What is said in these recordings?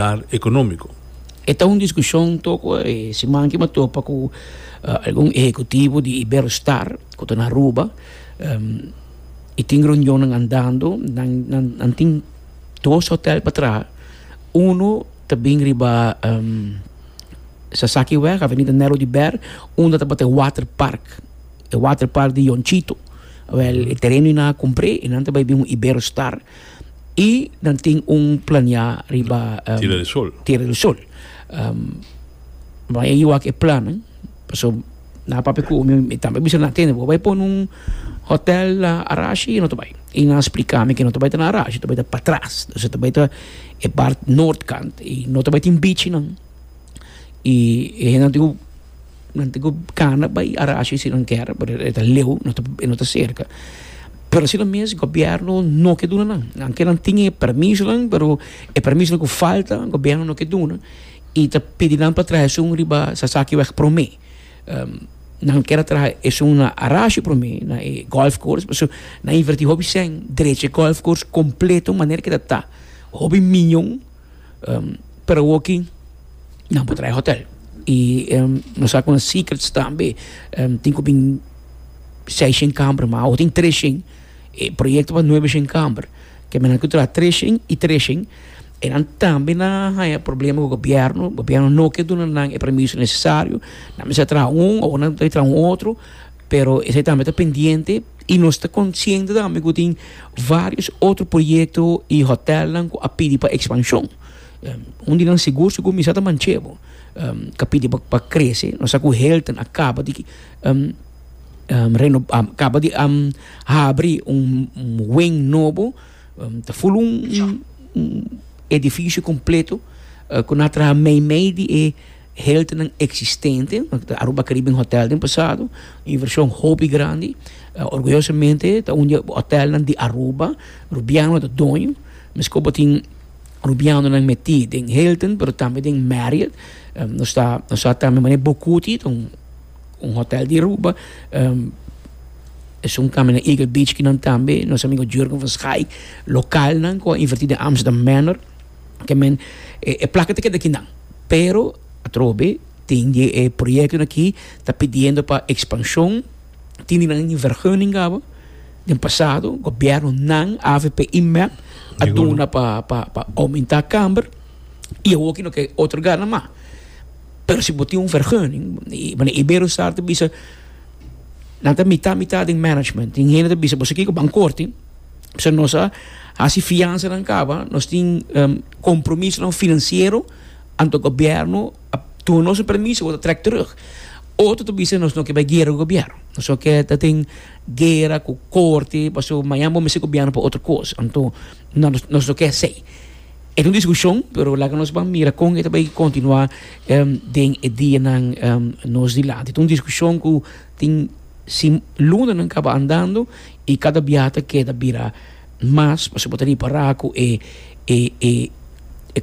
bienestar economico. E ta un discusion toco e siman aki me topa cu algun ehecutivo di Iberostar cu ta na Aruba y tin reunionnan andando, nan tin dos hotel patrá, uno ta bin riba Sasaki weg, Avenida Nero di Ber, unda tabata e water park, e water park di Yonchito, awel e tereno y nan a cumpre y nan ta bay bin un Iberostar. Y nan tin un plania riba Tierra del Sol. Tierra del Sol. Bo a ewa cu e plannan, pasobra nan a papia cu mi, mi tambe a bisa nan, Bo a bai pone un hotel na Arashi? Y no ta bai. Y nan a splica mi cu no ta bai ta na Arashi, ta bai ta patras. Entonces ta bai ta e part noord kant. Y no ta bai tin bichinan. Y e hendenan tin un. Nan tin ku gana bai arashi si nan kier pasobra e ta leu e no ta serka pero si lo mes gobierno no ke duna nan aunke nan tin e permisonan pero e permisonan ku falta gobierno no ke duna i ta pidi nan pa traha esun riba sasaki wèg promé nan kier a traha esun na arashi promé na e golf course so nan inverti hopi cen drecha e golf course completo manera ke ta ta hopi miñon. Pero awoki nan por traha hotel y nos sa cu nan secrets tambe. Tin cu bin seis shen camber ma awo tin tres shen. E proyecto pa nuebe shen camber. Kembernan cu traha tres shen y tres shen. E nan tambe na haya problema cu gobierno. Gobierno no ke duna nan e permiso necesario. Nan mester traha un o nan mester traha un otro. Pero esei tambe ta pendiente i nos ta konsiente tambe ku tin vários otro proyekto i hotèlnan ku a pidi pa ekspanshon. Un di nan sigur si kuminsá ta Manchebo ku a pidi pa krese. Nos sa ku Hilton a kaba di reno a kaba di habri un wen nobo. Ta full un edificio completo cu na traha meimei di e healthnan existente, Aruba Caribbean Hotel den pasado, inversion hopi grandi, orgullosamente ta un di e hotelnan di Aruba, Rubiano ta doño, mes cu bo tin Rubianonan meti den Hilton pero tambe den Marriot, nos ta nos ta tambe mane Bocuti ta un un hotel di Aruba. Um, es un kami na Eagle Beach ki nan tambe, nos amigo Jurgen van Schaik, lokal nan ko inverti den Amsterdam Manor, ke men, e, e plaka te keda ki nan. Pero, atrobe, tin di e proyekto aki ta pidiendo pa expansion, tin di nan in vergunning gaba, den pasado, gobièrnu nan, avp i mep, a duna pa, pa, pa aumenta kamber, i awor ki no ke otorga nan mas. Pero si bo tin un vergunning, bueno, Iberostar ta bisa, nan ta mitá mitá den management. Tin hende ta bisa, boso kiko, ban korti, pasobra nos a hasi fiansanan kaba, nos tin um kompromisonan finansiero, anto gobièrnu a tuma nos un permiso, bo ta trèk terug. Otro ta bisa, nos no ke bai guera ku gobièrnu. Nos no ke ta tin guera ku korti, pasobra mañan bo mester gobièrnu pa otro kos. Anto, nos no ke esei. E ta un diskushon, pero laga nos ban mira kon e ta bai kontinuá den e dianan nos dilanti. E ta un diskushon ku tin si lunanan kaba andando i kada biaha ta keda bira mas pasobra bo ta ripará ku e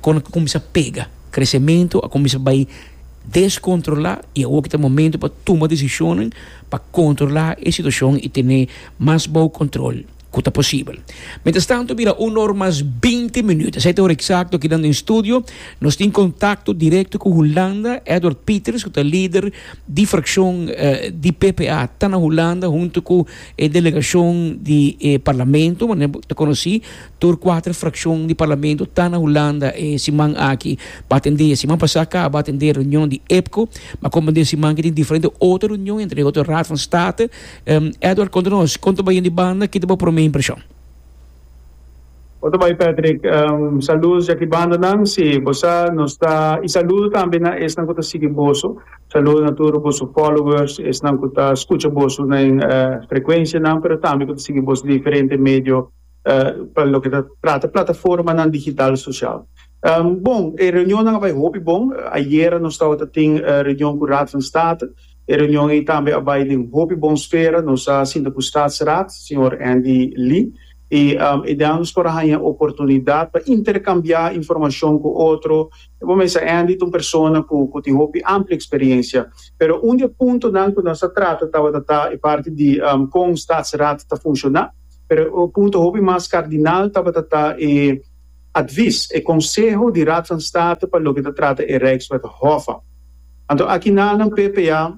kon a kuminsá pega. Kresementu a kuminsá bai deskontrolá i awor ki ta momentu pa tuma desishonnan pa kontrolá e situashon i tene mas bou kontrol. ku ta posibel. Mientras tanto bira un or mas binti minüt, esei ta ora eksakto aki den studio. Nos tin kontakto direkto ku Hulanda. Edward Pieters ku ta lider di frakshon di PPA ta na Hulanda huntu ku e delegashon di e parlamento. Bo ta konosí tur kuater frakshon di parlamento ta na Hulanda e siman aki. Bo a tende, e siman pasá ka bo a tende reunion di EPCO. Bo a komprendé e siman aki tin diferente otro reunion entre otro Raad van State. Edward konta nos kon ta bai di banda kita bo prome impreshon. Bo ta bai Patrick saludos di aki banda nan si bo sa nos ta y saludo tambe na esnan ku ta sigui boso saludo na tur boso followers esnan ku ta skucha boso na en frekuensia nan pero tambe ku ta sigui boso di diferente medio pa loke ta trata plataformanan digital sosial bon e reunionnan a bai hopi bon ayera nos tabata tin reunion ku Raad van State. E reunion ei tambe a bai den hopi bon sfera. Nos a sinta ku Statsraad, señor Andy Lee, i e den nos por a haña oportunidat pa interkambiá informashon ku otro. Bo mesa Andy ta un persona ku ku tin hopi amplia eksperiensia, pero un di e puntonan ku nos a trata tabata ta e parti di kon Statsraad ta funshoná, pero e punto hopi mas kardinal tabata ta e advis, e konseho di Raad van State pa loke ta trata e Rijkswet Hof. Anto aki nannan ppa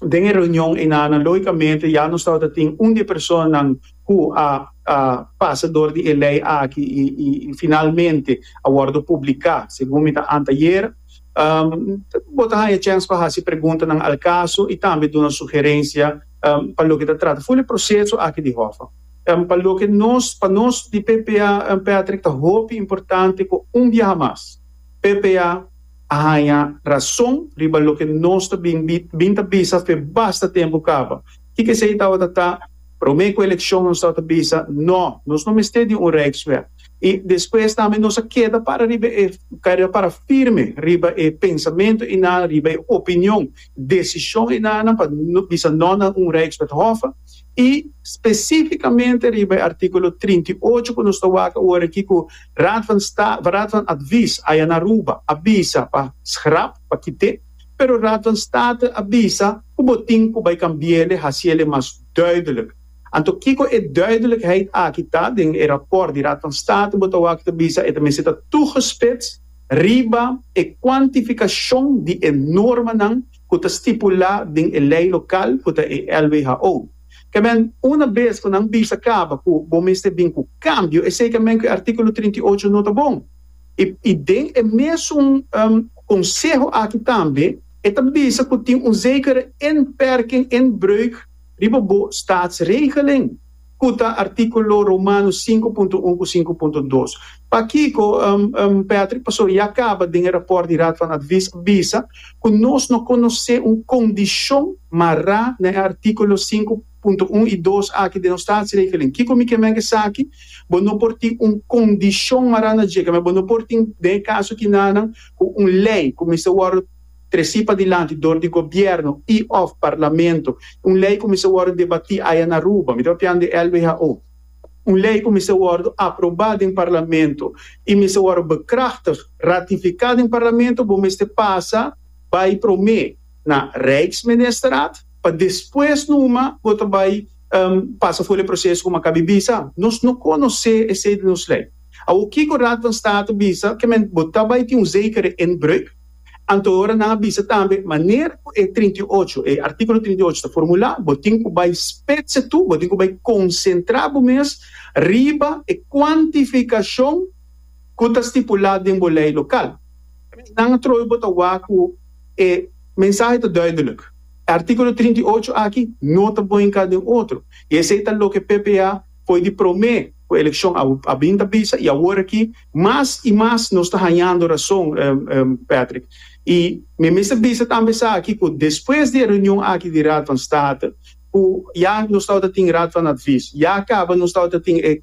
den e reunion ei nannan logicamente ya nos tabata tin un di e personanan cu a a pasa door di e ley aki y y y finalmente a wordo publica segun mi ta anteayer bo ta haya chance pa haci preguntanan al caso y tambe duna sugerencia pa loke ta trata full e proceso aki di hofa pa loke nos pa nos di ppa Patrick ta hopi importante cu un biaha mas ppa a haña rason riba loke nos ta bin bin ta bisa fe basta tempu kaba. Kiko esei tabata ta? Promé ku elekshon nos tabata bisa, Nò, nos no mester di un Rijkswet. I despues tambe nos a keda para riba e keda para firme riba e pensamentu i nan, riba e opinion, desishon i nan nan pa bisa nò na un Rijkswethof. i spesífikamente riba e artíkulo trinta i ocho ku nos ta wak ora aki ku Raad van Sta, Raad van Advies, aya na Aruba a bisa pa schrap, pa kit'é, pero Raad van State a bisa ku bo tin ku bai kambi'el, hasiel e mas duidelijk. Anto kiko e duidelijkheid aki ta? Den e rapòrt di Raad van State bo ta wak ta bisa e ta mester ta tugespits riba e kuantifikashon di e normanan, ku ta stipulá den e lei lokal ku ta e LWHO. Kemen, una bes ku nan bisa kaba ku bo mester bin ku kambio, esei kemen ku e artíkulo trinta i ocho no ta bon. I i den e mesun konseho aki tambe e ta bisa ku tin un zekere inperking, inbreuk, riba bo staatsregelen. ku ta artíkulo Romanos sinku punto un ku sinku punto dos. Pakiko Patrick Pasouri a kaba den e rapòrt di Raad van Advies a bisa ku nos no konosé un kondishon mará na e artíkulo sinku punto un i dos aki den nos Staatsregeling? Kiko mi ke meng esaki? Bo no por tin un kondishon mará na djega, mi bo no por tin den e kaso kinanan ku un lei ku mester wòrdu tresi padilanti dor di gobièrnu i òf parlamento, un lei kuminsá wòrdu debatí aya na Aruba, mi ta papian di LWHO, un lei kuminsá wòrdu aprobá den parlamento i minsté wòrdu bekrachtig, ratifiká, den parlamento, bo mester pasa bai promé na Rijksministerraad pa despues numa bo ta bai pasa for e proseso ku mi a kabi bisa. Nos no konosé esei di nos lei. Awor kiko Raad van State bisa? Ke men bo ta bai tin un zekere inbreuk? Anto ora nan a bisa tambe manera ku e trinta i ocho, e artíkulo trinta i ocho ta formulá, bo tin ku bai spetse tu, bo tin ku bai konsentrá bo mes riba e kuantifikashon ku ta stipulá den bo lei lokal. Nan a trobe bo ta wak ku e mensahe ta duidelik, e artíkulo trinta i ocho aki no ta bon inká den otro, i esei ta loke ppa foi di promé ku elekshon a bin ta bisa i awor aki Mas i mas nos ta hañando rason, Patrick. I mi mester bisa tambe esaki ku despues di e reunion aki di Raad van State, ku ya nos tabata tin Raad van Advies, ya a kaba nos tabata tin e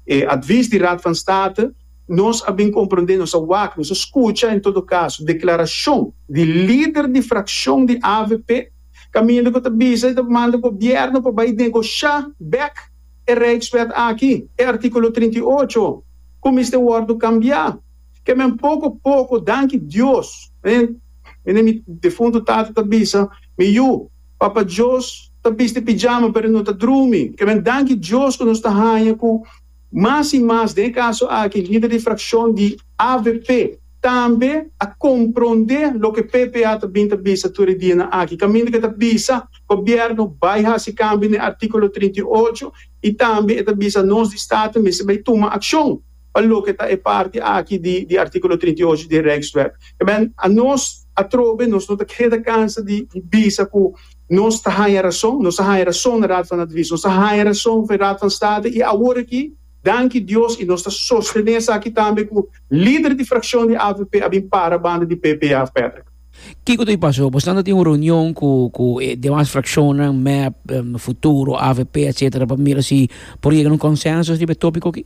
e advies di Raad van State, nos a bin komprondé, nos a wak, nos a skucha en todo kaso deklarashon di lider di frakshon di avp kaminda ku ta bisa i ta manda gobièrnu pa bai negoshá bèk. e Rijkswet aki, e artíkulo trinta i ocho, ku mester wòrdu kambiá. Ke men poko poko, danki Dios, mi na mi defuntu tata ta bisa, Mi yu, Papa Djos ta bisti pijama pero no ta drumi. Ke men danki Dios ku nos ta haña ku mas i mas, den e kaso aki, lider di frakshon di avp, Tambe a komprondé loke PPA ta bin ta bisa tur e dianan aki, kaminda ku e ta bisa gobièrnu bai hasi kambio na e artíkulo trinta i ocho i tambe e ta bisa nos di State mester bai tuma akshon pa loke ta e parti aki di di artíkulo trinta i ocho di e Rijkswet. Esei anos atrobe nos no ta keda kansa di bisa ku nos ta haña rason, nos a haña rason na Raad van Advies, nos a haña rason for e Raad van State i awor aki, Danki Dios y nos ta sostene esaki tambe cu lider di fraccion di avp a bin para banda di PPA, Patrick. Kico ta a paso? Boshnan ta tin un reunion cu cu e demas fraccionnan, mep, Futuro, avp, etc. Pa mira si por yega na un consensus riba e topico aki?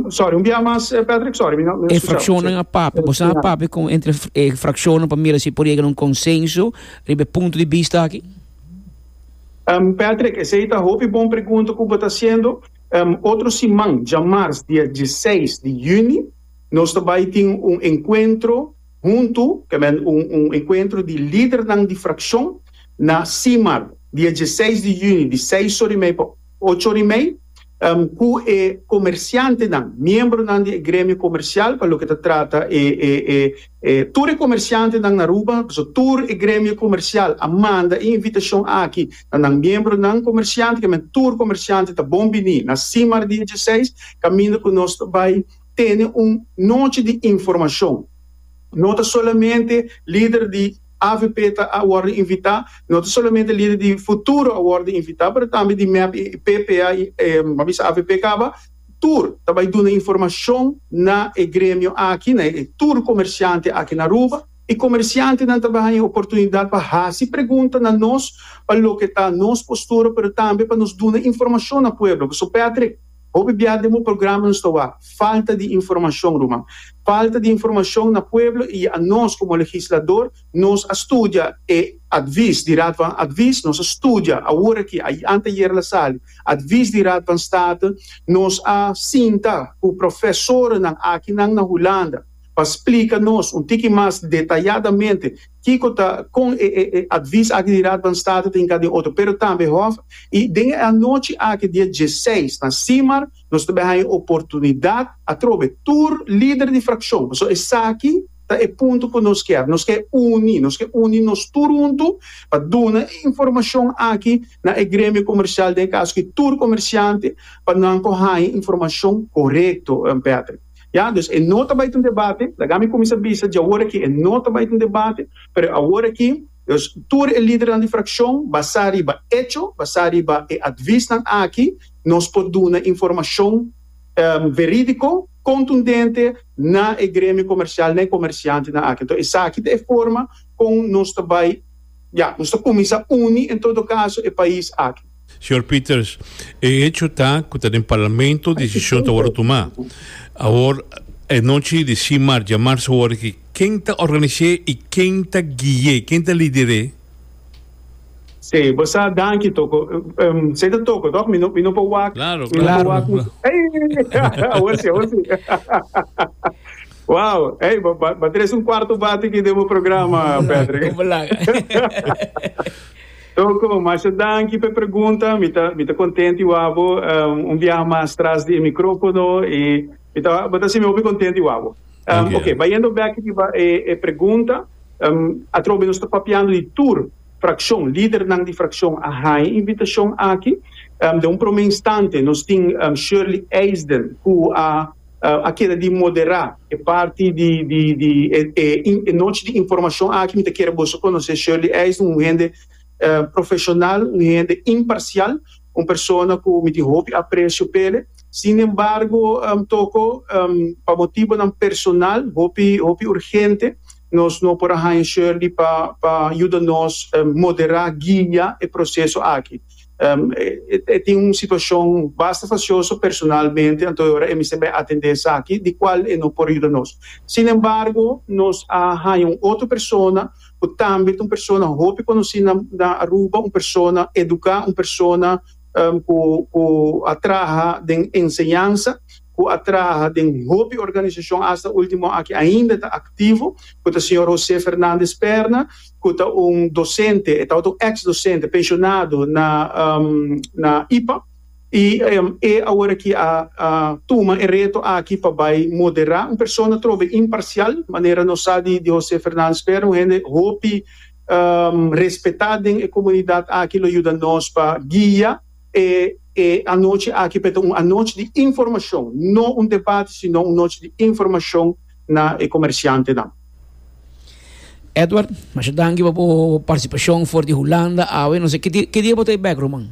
Sorry, un bia mas Patrick, sorry, mi no scucha. E fraccionnan a papia, boshnan a papia con entre e fraccionnan pa mira si por yega na un consensus riba e punto di bista aki? Patrick, esey ta hopi bon pregunta cu bo ta haciendo. Otro siman, dja mars dia dieseis di juni, nos ta bay tin un encuentro hunto, ta meen un encuentro di lidernan di fraccion na Simar, dia dieseis di juni, di seis orimei pa. Ocho di mei, ku e komersiantenan, miembronan di e gremio komersial pa loke ta trata e tur e komersiantenan na Aruba, pasobra tur e gremio komersial a manda e invitashon aki na nan miembronan komersiante, kiamen tur komersiante ta bon biní na Simar dia dieseis, kaminda ku nos ta bai tene un nochi di informashon. No ta solamente lider di. AVP ta a worde invita, no ta solamente lider di futuro a worde invita pero tambe di mep y PPA y a bisa AVP caba tur ta bay duna informacion na e gremio aki na e tur comerciante aki na Aruba y comerciantenan ta bay haña e oportunidad pa haci pregunta na nos pa loke ta nos postura pero tambe pa nos duna informacion na pueblo. So Patrick. Hopi bia den bo programa nos ta wak falta di informashon ruman. Falta di informashon na pueblo i a nos komo legislador nos a studia e advis di Raad van Advis, nos a studia awor aki a anteayer la sali advis di Raad van State, nos a sinta ku profesornan akinan na Hulanda pa splika nos un tiki mas detayadamente. Kiko ta kon e e e advies aki di Raad van State ta hinká den otro, pero tambe Hof, i den e anochi aki dia dieseis na Simar nos ta bai haña e oportunidad atrobe tur lider di fraccion, pasobra esaki ta e punto cu nos kier, nos ke uni, nos ke uni nos tur huntu pa duna e informacion aki na e gremio comercial, den e caso aki tur comerciante, pa nan por haña informacion corecto, Patrick. Ya, dus e no ta bai ta un debate, laga mi kuminsá bisa dje awor akí, e no ta bai ta un debate, pero awor akí, dus tur e lidernan di frakshon, basá riba echo, basá riba e atvisnan aki, nos por duna informashon verídiko, kontundente na e gremio komersial, na e komersiantenan aki. Enton esaki ta e forma kon nos ta bai, ya, nos ta kuminsá uni en todo kaso e pais aki. Señor Peters, e hecho ta cu ta den Parlamento decision ta worde tuma. Awor, e nochi di CIMAR djamar su worde aki. Ken ta organis'é y ken ta gui'é, ken ta lider'é? Sí, bo sa, danki Toko. Esei ta Toko, toch? Mi no, mi no por wak, mi no por wak cu. Ey! Awor si, awor si. Wow! Ey, bo ba tres un cuarto bate aki den bo programa, Patrick. Como laga? Toko, masha danki p'e pregunta. Mi ta mi ta kontent di wak bo un biaha mas tras di e mikrofono i mi ta bo ta sinmi hopi kontent di wak bo. Dank'e. Oke, bayendo bèk riba e e pregunta, atrobe nos ta papiando di tur frakshon, lidernan di frakshon a haña invitashon aki. Den un promé instante nos tin Shirley Eisden ku a. a keda di moderá e parti di di e nochi di informashon aki mi ta kere boso konosé Shirley Eisen un hende profeshonal un hende imparsial un persona ku mi tin hopi apresio pa ele sin embargo toko pa motibonan personal hopi hopi urgente nos no por a haña Shirley pa pa yuda nos moderá guia e proseso aki. E tin un situacion basta facioso personalmente anto e ora e mester bai atende esaki di cual e no por yuda nos. Sin embargo nos a haya un otro persona cu tambe ta un persona hopi conoci na Aruba, un persona educa, un persona cu a traha den enseñansa. cu a traha den hopi organisacion hasta ultimo aki ainda ta activo, cu ta señor Jose Fernandez Perna, cu ta un docente, e tabata un ex docente, pensionado na na ipa, y e awor aki a a tuma e reto aki pa bay modera, un persona trobe imparcial, manera nos sa di di Jose Fernandez Perna, un hende hopi respeta den e comunidad aki, lo yuda nos pa guia. E e anochi aki por e ta un anochi di informashon, no un debate sino un nochi di informashon na e komershantenan. Edward, masha danki pa bo partisipashon for di Hulanda awe. No se ki dia ki dia bo ta e bèk, Roman?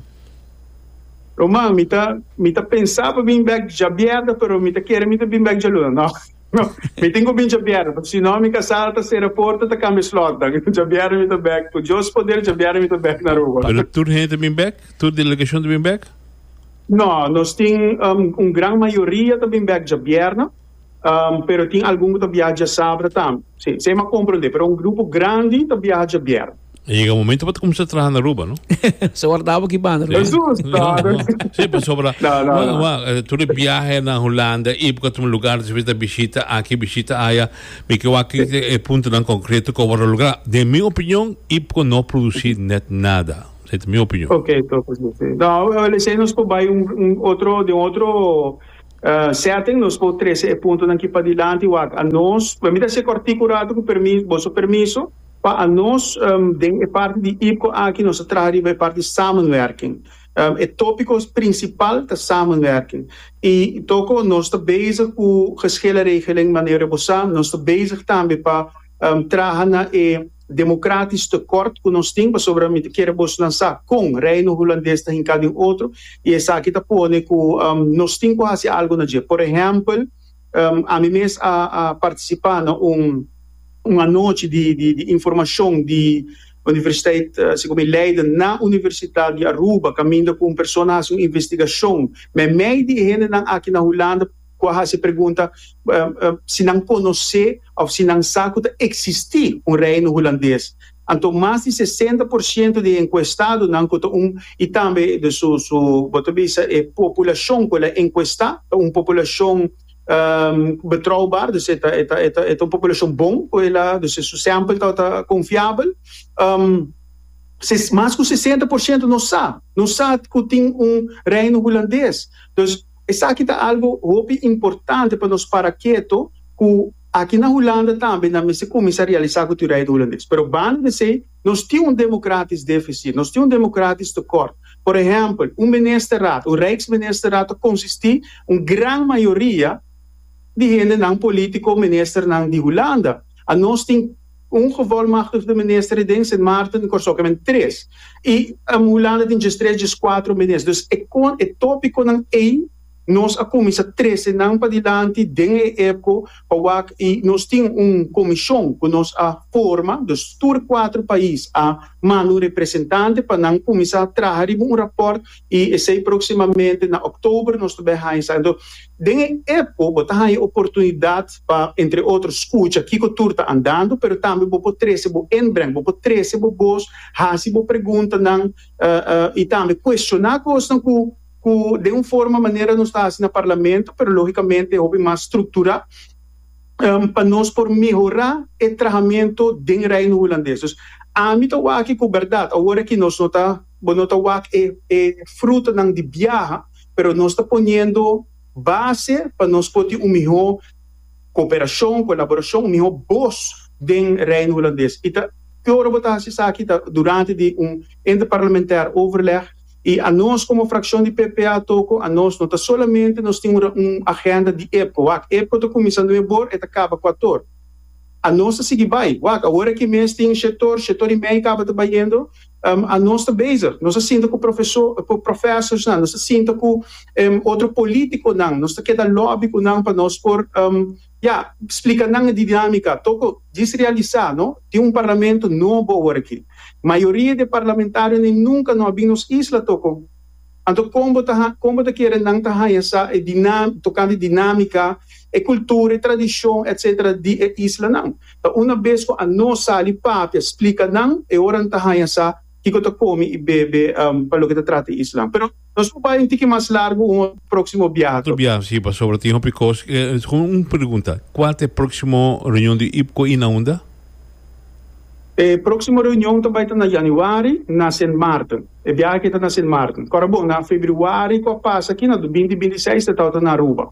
Roman, mi ta mi ta pensa pa bin bèk djabièrda pero mi ta kere mi ta bin bèk djaluna. No, mi tin cu bin djabiera, pasobra si no mi ta sal ta cera porta ta cambia slot dan. Djabiera mi ta back, cu Dios poder djabiera mi ta back na Aruba. Pero tur hende ta bin back? Tur delegacion ta bin back? No, nos tin un gran mayoria ta bin back djabierna, pero tin algun cu ta biaha djasabatda tambe. Si, esey mi a comprende, pero un grupo grandi ta biaha djabierna. A yega momento pa ta cuminsa traha na Aruba, no? So ora tabo ki banda. Sí. Eso es nada. Sí, pues sobra. No, no, Wa- no. wa- eh, Tú de viaje na Holanda, y porque tu lugar de visita, visita aquí, visita allá. Mi que wa que el punto tan concreto que va a lograr. De mi opinión, y porque no producir net nada. Esa es mi opinión. Ok, so pues sí. No, eh, le sé nos por bij un, un otro, de un otro eh, setting, nos por trece e punto dan ki pa dilanti, wak. A nos, we mita se cortico rato, con permiso, boso permiso. Pa anos den e parti di IPCO aki nos a traha riba e parti di samenwerking. E topikos prinsipal ta samenwerking i toko nos ta bezig ku geschillenregeling manera bo sa, nos ta bezig tambe pa traha na e demokratisch tekort ku nos tin pasobra mi ta kere bo nan sa kon Reino Hulandes ta hinka den otro i esaki ta pone ku nos tin ku hasi algu na dje. Por ehèmpel. Ami mes a partisipá na un un anochi di di di informashon di universiteit sico mi Leiden na Universitat di Aruba caminda cu un persona haci un investigashon meimei di e hendenan aki na Hulanda cu a haci e pregunta si nan conoce of si nan sa cu ta existi un Reino Hulandes. Anto mas di sesenta por siento di e enkuestadonan ku ta un i tambe de su su bo ta bisa e populashon ku el a enkuestá ta un populashon betroubar, dus e ta e ta e ta e ta un populashon bon ku el a dus e su sèmpel ta ta konfiabel. Ses mas ku sesenta por siento no sa no sa ku tin un Reino Hulandes. Dus esaki ta algu hopi importante pa nos para keto ku. Aki na Hulanda tambe nan mester kuminsá realisá ku tiudaia di hulandes. Pero banda des ei, nos tin un demokratis defisi, nos tin un demokratis tekort. Por ehèmpel, un ministerat, un rijksministerraad ta konsistí un gran mayoria di hendenan, polítiko, ministernan di Hulanda. A nos tin un gevolmachtigde minister e den Sint Maarten, Kòrsou ke men tres. I Hulanda tin djes tres, djes kuater minister. Dus e kon, e tópikonan ei. Nos a kuminsá trese nan padilanti den e epko pa wak i nos tin un komishon ku nos a forma, dus tur kuatru pais a manda un representante pa nan kuminsá traha riba un rapòrt i esei próksimamente na òktober nos ta bai haña sa. Enton den e epko bo ta haña oportunidat pa entre otro skucha kiko tur ta andando pero tambe bo por trese bo inbreng, bo por trese bo bos, hasi bo preguntanan i tambe kuestioná kosnan ku. cu den un forma manera nos ta haci na Parlamento, pero logicamente hopi mas structura, pa nos por mehora e trahamento den Reino Hulandes. Dus ami ta wak aki cu berdad, awor aki nos no ta, bo no ta wak e e frutonan di biaha, pero nos ta poniendo base pa nos por tin un miho cooperacion, colaboracion, un miho boz den Reino Hulandes. Y ta, e ora bo ta haci esaki ta durante di un interparlamentair overleg, I a nos komo frakshon di PPA toko a nos no ta solamente nos tin un agenda di epko, wak, epko ta kuminsá nueve bor e ta kaba kuator. A nos ta sigui bai, wak, awor aki mes tin shetor, shetor i mei kaba ta bayendo, a nos ta bezig, nos ta sinta ku profesó, ku profèsorsnan, nos ta sinta ku otro polítikonan, nos ta keda lòbi ku nan pa nos por. Ya, splika nan e didiámika. Toko djis realisá, no? Tin un parlamento nobo awor akí. Mayoria di e parlamentarionan nunka no a bin nos isla toko. Anto kon bo ta ha, kon bo ta kere nan ta haña sa e dina, tokante dinámika, e kultura, e tradishon etcétera di e islanan? Ta una bes ku a no sali papia, splika nan e ora nan ta haña sa. kiko ta komi i bebe pa loke ta trata Islam. Pero nos por bai un tiki mas largu un proksimo biaha Otro tokbe. biaha si, pasobra tin hopi kos ke Segun un pregunta, kua ta e proksimo reunion di IPCO i na unda? E proksimo reunion ta bai ta na yanüari na Sint Maarten. E biaha akí ta na Sint Maarten. Kòrda bon, na febrüari ku a pasa akí, na binti binti seis ta tabata na Aruba.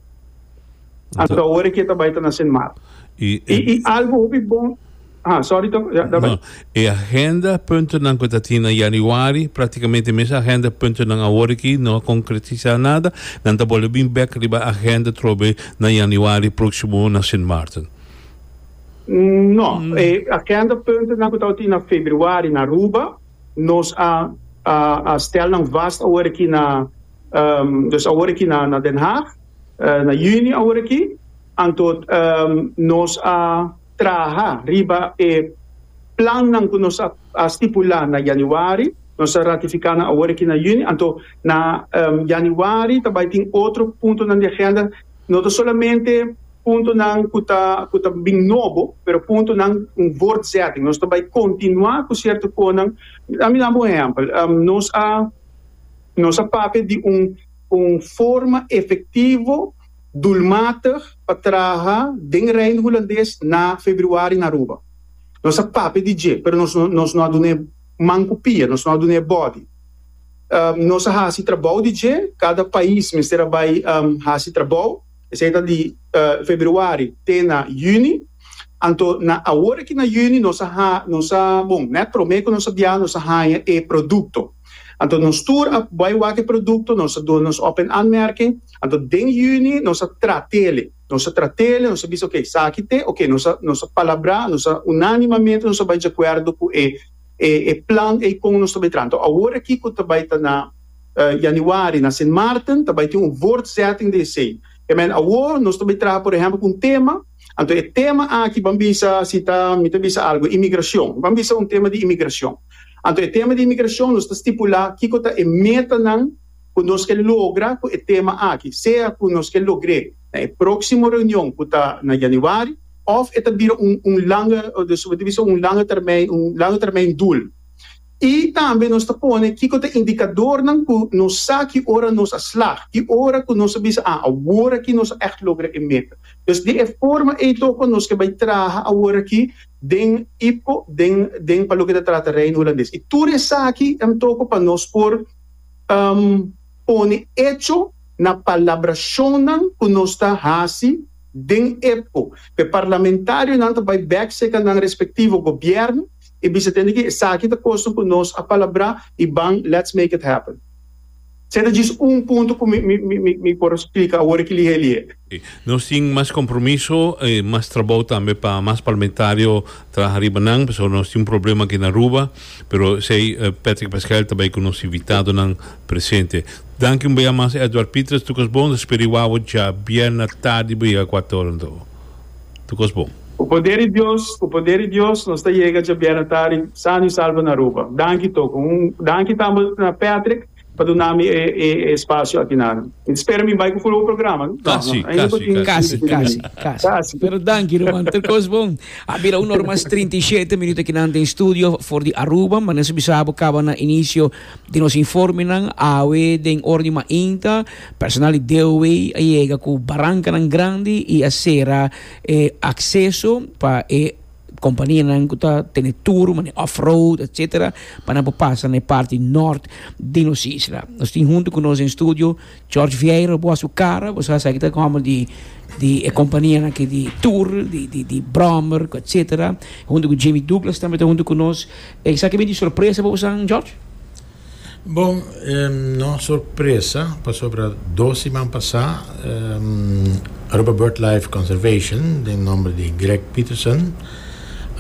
Anto awor e ke ta bai ta nase mar. I i algo hopi bon Aha, sorry tok, ya, da bai. No, e agenda puntonan ku ta tin na yanüari, praktikamente e mes agenda puntonan awor aki no a konkretisá nada, nan ta bole bin bèk riba agenda trobe na yanüari próksimo na Sint Maarten. No, e agenda puntonan ku tabata tin na februari na Aruba, nos a a stèl nan vast awor aki na, dus awor aki na Den Haag. Na juni awor aki, anto nos a traha riba e plannan ku nos a stipulá na yanüari, nos a ratifiká nan awor aki na juni, anto na yanüari ta bai tin otro puntonan di agenda, no ta solamente puntonan ku ta ku ta bin nobo, pero puntonan un voortzetting, nos ta bai kontinuá ku sierto konan, dami dam un ehèmpel, nos a nos a papia di un. Un forma efektivo, dulmatig pa traha den Reino Hulandes na Februari na Aruba. Nos a papia di dje, pero nos no nos no a dun'e man ku pia, nos no a dun'e bòdi. Nos a hasi trabou di dje, kada pais mester a bai hasi trabou, esei ta di Februari te na Yüni. Anto na awor aki na Yüni nos a ha nos a bon nèt promé ku nos a bia nos a haña e produkto. Anto nos tur a bai wak e produkto, nos a duna nos open aanmerking. Anto den yüni nos a trat'el'i. Nos a trat'el'i, nos a bisa oké, esaki t'e oké. Nos a nos a palabrá, nos a unánimamente nos a bai djakuerdo ku e e e plan ei kon nos ta bai traha. Anto awor aki ku ta bai ta na Yanüari na Sint Maarten ta bai tin un voortzetting di esei. Te men awor nos ta bai traha por ehèmpel ku un tema. Anto e tema aki ban bisa si ta mi ta bisa algu imigrashon, ban bisa un tema di imigrashon. Anto e tema di imigrashon nos ta stipulá kiko ta e metanan ku nos ke logra ku e tema aki, sea ku nos ke logr'é na e próksimo reunion ku ta na yanüari òf e ta bira un un langa, mi ta bisa un langa termijn, un langa termijn doel. I tambe nos ta pone kiko ta indikadornan ku nos sa ki ora nos a slag, ki ora ku nos a bisa, a aworakí nos a ègt logra e meta. Pues di e forma ei toko nos ke bai traha aworakí den IPCO, den den pa loke ta trata Reino Hulandes. I tur esaki em toko pa nos por pone echo na palabrashonnan ku nos ta hasi den IPCO. P'e parlamentarionan ta bai bèk seka nan respektivo gobièrnu. I bisa den di ke esaki ta kosten ku nos a palabrá i ban let's make it happen. Sey ta djis un punto ku mi mi mi por splika awor aki lihé lihé. Si, nos tin mas kompromiso i mas trabou tambe pa mas parlamentario traha riba nan, pasobra nos tin un problema aki na Aruba, pero esei Patrick Pasquel ta bai ku nos invitadonan presente. Danki un beyá mas Edward Pitres, Lucas Bond, ta spera e wawa djabièrnè tardi bo yega kuatorento. tur kos bon. Ku poder di Dios, ku poder di Dios nos ta yega dja bièrnè tardi sano i salvo na Aruba. Danki Toko. Un danki tambe na Patrick pa dunami e e spasio aki nan. Mi ta spera mi bai ku fulbo programa, no? Kasi, kasi, kasi. Kasi, kasi, kasi. Pero danki ruman, tur kos bon. A bira un ora mas trinta i shete minuto aki nan den studio for di Aruba, ma nan sibi sa bo kaba na inisio. Di nos informenan, awe den ora di mainta, personal di DOW a yega ku barankanan grandi i a sera e akseso pa e kompanianan ku ta tene tur, manera off-road, etsetera, pa nan por pasa na e parti nort di nos isla. Nos tin huntu ku nos den studio. George Vieira bo a su cara bo sa aki ta como di di e compania aki di tour di di di brommer etc hunto cu Jimmy Douglas tambe ta hunto cu nos esaki bini sorpresa pa bosan George? Bon no sorpresa pasobra dos siman pasa Aruba Bird Life Conservation den nomber di Greg Peterson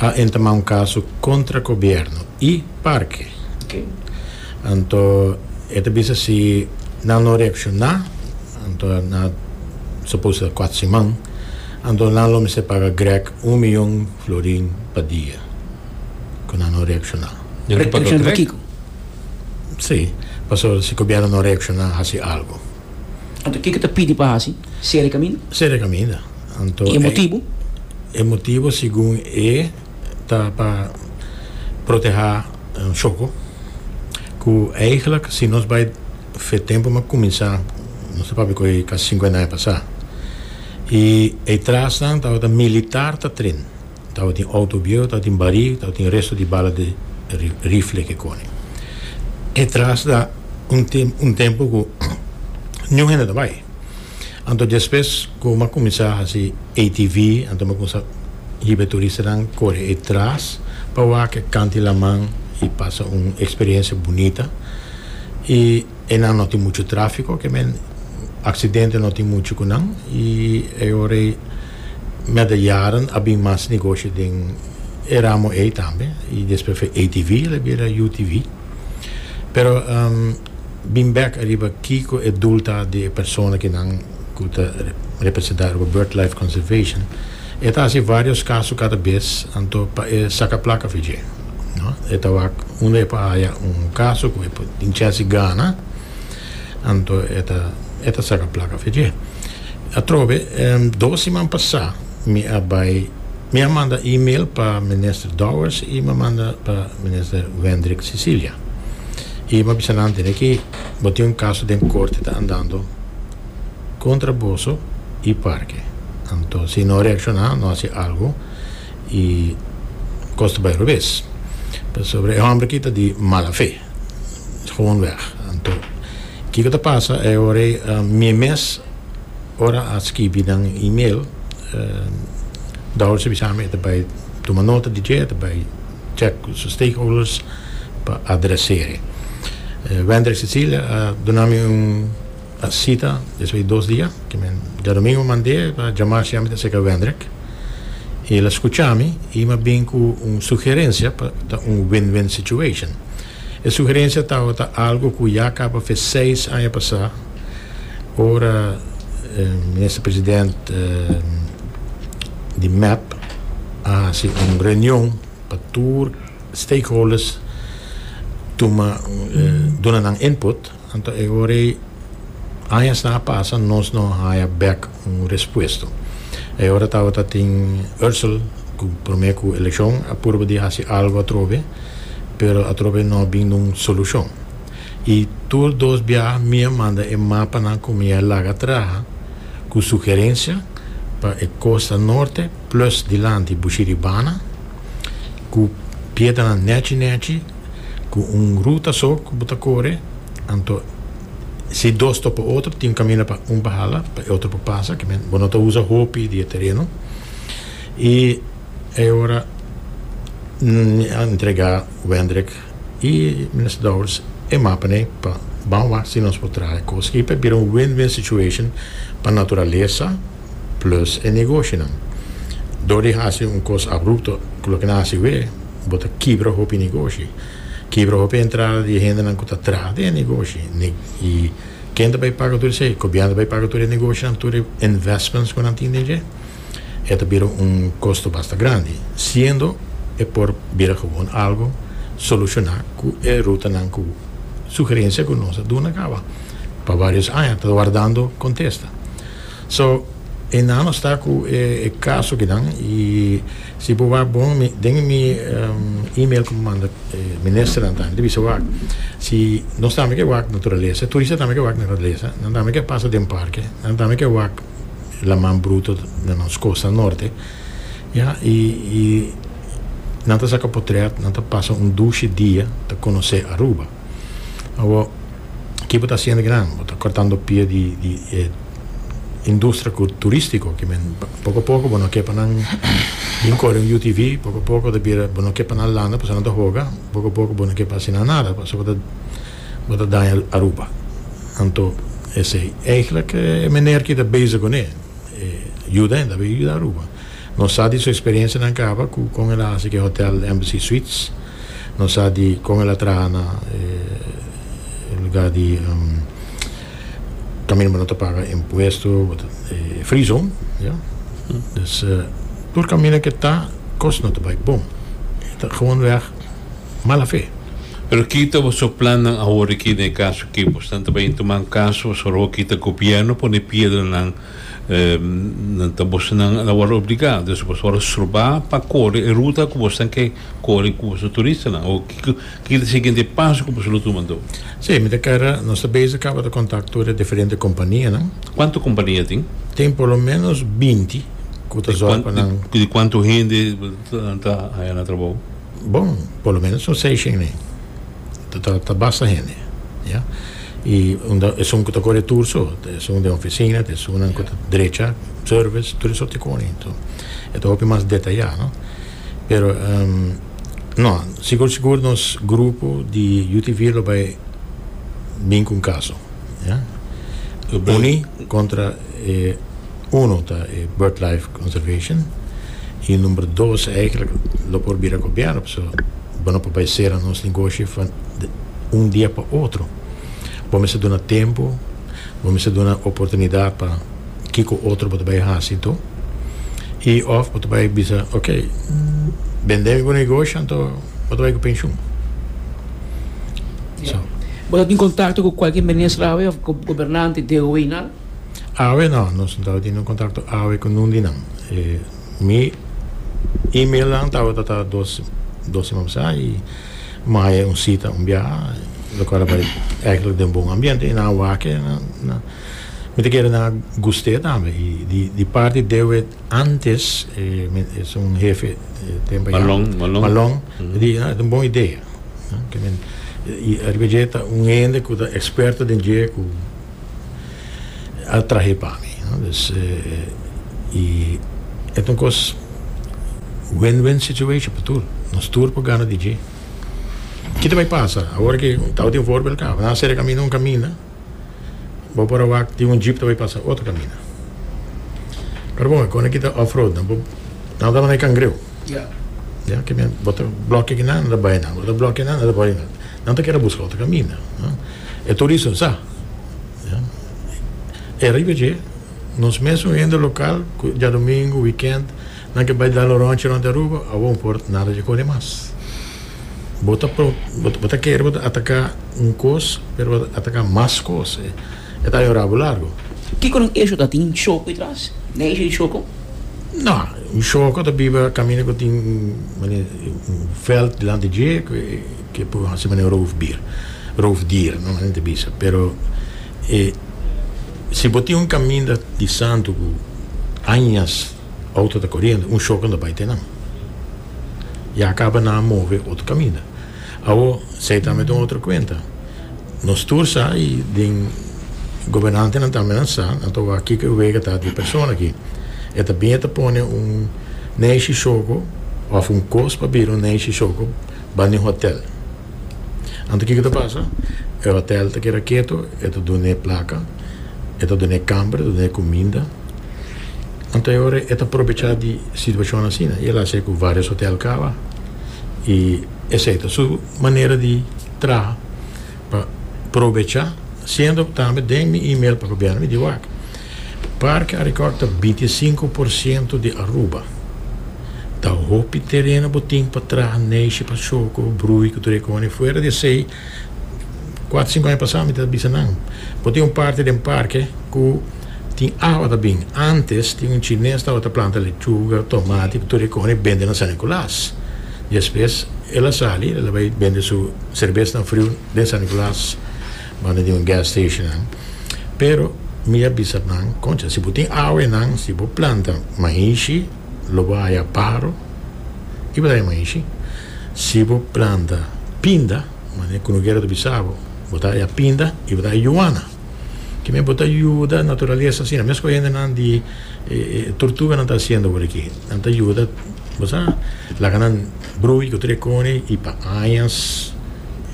a entama un caso contra gobierno y parke. Anto e ta bisa si nan lo reakshoná, anto nan a supos ta kuat siman, anto nan lo mester paga Greg un miyon florin pa dia ku nan no reakshoná. Nan lo paga Greg? Sí, paso si gobièrnu no reakshoná hasi algu. Anto kiko ta pidi pa hasi? Sera e kaminda? Sera e kaminda. Anto e. I e motibu? E motibu segun e. ta pa protehá shoko ku eigelijk si nos bai fe tempu m'a kuminsá nos ta papia ku ei kasi sinkuenta aña pasá i e trasnan tabata militar ta tren tabatin outo bieu tabatin barí tabatin resto di bala di rifle ke koni e trasnan un tempu ku niun hende ta bai. Anto despues cu mi a cuminsa haci ATV, anto mi a cuminsa hiba e turistanan core e tras pa wak, e canta e laman y pasa un experiencia bunita. Y enan no tin mucho trafico, que men accidente no tin mucho cu nan y e ora ey met de jaren a bin mas negoshi den e ramo ey tambe y despues fu ATV y ala bira UTV. Pero. Bin bek ariba kiko e dul ta di e persona ki nan ku ta representá riba BirdLife Conservation. E ta hasi vários kaso kada bes, anto pa e saka plaka fi dje. No. E ta wak unda e por haya un kaso ku e por tin chènsi gana, anto e ta e ta saka plaka fi dje. Atrobe, dos siman pasá mi a bai mi a manda email pa Minister Dowers i mi a manda pa Minister Wendrick Cecilia. I bo a bisa nan antes aki, bo tin un kaso den korte ta andando kontra boso i parke. Anto si no reakshoná, no hasi algu, i kos ta bai robes. Pasobra e hòmber aki ta di mala fe, gewonweg. Anto kiko ta pasa e ora ei? Mi mes ora a skibi nan email, Douwers a bisami e ta bai tuma nota di dje, e ta bai. check cu su stakeholders pa adreseri. Wendrick Cecilia a duna mi un cita despues di dos dia cu mi diadomingo mand'e pa jama si ami ta seca Wendrick. Y el a scucha mi y mi a bin cu un sugerencia pa ta un win-win situation. E sugerencia tabata algo cu ya caba fe seis aña pasa, ora Minister President di mep a haci un reunion pa tur stakeholders tuma, duna nan input. Anto e ora ei, añasnan a pasa, nos no haya bek un respuesto. E ora tabata tin Ursel cu prome cu eleccion a purba di haci algo atrobe, pero atrobe no a bin dun solucion. Y tur dos biaha mi a manda e mapanan cu mi a laga traha cu sugerencia pa e Costa Norte plus dilanti Bushiribana cu piedanan nechi nechi, ku un ruta so ku bo ta kore, anto si dos topa e otro tin kaminda pa un por hala, pa e otro por pasa, ke men bo no ta usa hopi di e tereno. I e ora mi a entrega Wendrik i Minister Dowers e mapanan pa ban wak si nos por traha e kos. I pa bira un win-win situation pa naturalesa, plus e negoshonan. Dor di hasi un kos abrupto ku loke nan hasi wé, bo ta kibra hopi negoshi. Kibra hopi entrada di e hendenan ku ta traha den e negoshi. I ken ta bai paga tur esei? Gobièrnu ta bai paga tur e negoshonan, tur e investments ku nan tin den dje? E ta bira un kosto basta grandi, siendo e por bira gewoon algu solushoná ku e rutanan ku sugerensia ku nos a duna kaba pa vários aña ta wardando kontesta. So e nano sta ku e kasukinan i si bo wak bon mi den mi email ku bo manda e ministernan tambe ta bisa wak si nos tambe ke wak naturalesa e turista tambe ke wak naturalesa nan tambe ke pasa den parke nan tambe ke wak laman bruto na nos kosta norte ya i nan ta saka potrèt nan ta pasa un dushi dia ta konosé Aruba. Awor, ki bo ta hasiendo kinan? Bo ta cortando pia di e industria turistico ki men poco poco bo no ke pa nan bin cori un UTV, poco poco ta bira bo no ke pa nan landa pasobra nan ta hoga, poco poco bo no ke pa haci nan nada pasobra bo ta bo ta daña Aruba. Anto esey, eigenlijk e meneer ki ta bezig cune yuda hende a yuda Aruba. Nos sa di su experiencianan caba cu con el a haci ke hotel Embassy Suites. Nos sa di con el a traha na e lugar di caminda bo no ta paga impuesto, bo ta e free zone, ya. Dus tur caminda ke ta cos no ta bay bon. E ta gewoon weg mala fe. Pero ki ta boso plannan awor aki den e caso aki? Bosnan ta bay intuman caso, boso a roki ta gobierno pone piedranan Nan ta bosonan na wòrdu obligá, dus boso wòrdu strobá pa kore e ruta ku boso ke kore ku boso turistanan o kiko ta siguiente paso ku boso lo tuma anto? Sí, mi ta kara nos ta beza kaba ta kontakto e diferente kompanianan. Kuantu kompania tin? Tin por lo ménos binti ku ta zòrg pa nan. Di kuantu hende nan ta haña na trabou? Bon, por lo ménos un seis shen'e. ta ta basta hende ya y unda esun ku ta kore tur so ta esun den oficina ta esunnan ku ta drecha service tur esop ti kore so e ta hopi mas detaya no pero no sigur sigur nos grupo di UTV lo bai bin ku un kaso ya uni kontra E uno ta e Bird Life Conservation y number dos eigenlijk lo por bira gobierno pasobra bo no por bay cera nos negoshi van un dia pa otro bo mester duna tempo bo mester duna oportunidad pa kico otro bo ta bay haci do y of bo ta bay bisa ok bende mi bo negoshi anto bo ta bay cu pensioen so. Bo ta tin contacto cu cualkier minister awe of gobernante DOE nan? Awe no, nos no tabatin un contacto awe cu nun di nan. E mi e-mailnan tabata ta dos dos sema pasá y maya un cita un biaha locual a bai eigenlijk den bon ambiente y nan a wak-e na mi ta kere nan a gust'e tambe y di di parti Dewet antes e mi ta es un hefe tempo ayera Malong Malong Malong a di a e ta un bon idea y ariba dje ta un hende cu ta experto den dje cu a trahe pa mi no dus i e ta un kos win win situation pa tur nos tur por gana di dje ki ta bai pasa awor ke tao tin voorbel ka nan a sere kaminda un kaminda bo por a wak tin un jeep ta bai pasa otro kaminda pero bon kos na kita off road nan bo nan bo ta manda e kangreu ya bo ta blokia kinan nan ta bai nan bo ta blokia nan nan ta bai nan Nan ta kere buska otro kaminda. E tur dicen, sa. E ariba dje, nos mesun hende local cu djadomingu, weekend, nan ke bai dal un ronchi rond di Aruba, awo un por nada dje cone mas. Bo ta bo ta kere bo ta ataca un cos, pero bo ta ataca mas cos. E ta haña un rabo largo. Kico nan echo ta tin choco di tras? Nan echo tin choco? No. Un choco ta biba caminda cu tin, mane, un veld dilanti dje. Ke por hasi meneer roofdier, roofdier no hasi ta bisa, pero e si bo tin un kaminda di santu ku añas outo ta koriendo un shoke no ta bai te nan ya kaba nan a move otro kaminda awo esei tambe ta un otro kuenta nos tur sa i den gobernantenan tambe nan sa nan ta wak kiko e wega ta di persona aki e ta bin e ta pone un neshi shoko of un kos pa bira un neshi shoko. Bai n'e hotel. Anto kiko ta pasa? E hotel ta keda keto, e ta dun'e plaka, e ta dun'e kamber, e ta dun'e kuminda. Anto e ora e ta probecha di situashon asina i el hasi ku vários hotel kaba i esei ta su manera di traha. pa probecha siendo tambe den mi email pa gobierno mi di wak Parke Arikòrk ta bintisinku por siento di Aruba ta hopi tereno bo tin pa traha Neishi Pachoko Brui ku tur e kòne fuera di esei kuater sinku aña pasá mi ta bisa nan bo tin un parti den parke ku tin awa ta bin ántes tin un chines tabata planta lechuga tomati ku tur e kòne bende na San Nikolas. Despues el a sali, el a bai bende su serbesnan friu den San Nicolas, banda di un gas station nan. Pero mi a bisa nan, Concha, si bo tin awe nan, si bo planta mahishi, lo bo haya paro i bo ta haya mahishi. Si bo planta pinda, manera ku Noguera ta bisa bo, bo ta haya pinda i bo ta haya yuana. Kime bo ta yuda naturalesa asina mesku hendenan di turtuganan ta hasiendo wor aki nan ta yuda bo sa laga nan brui ku tur e koni i pa añas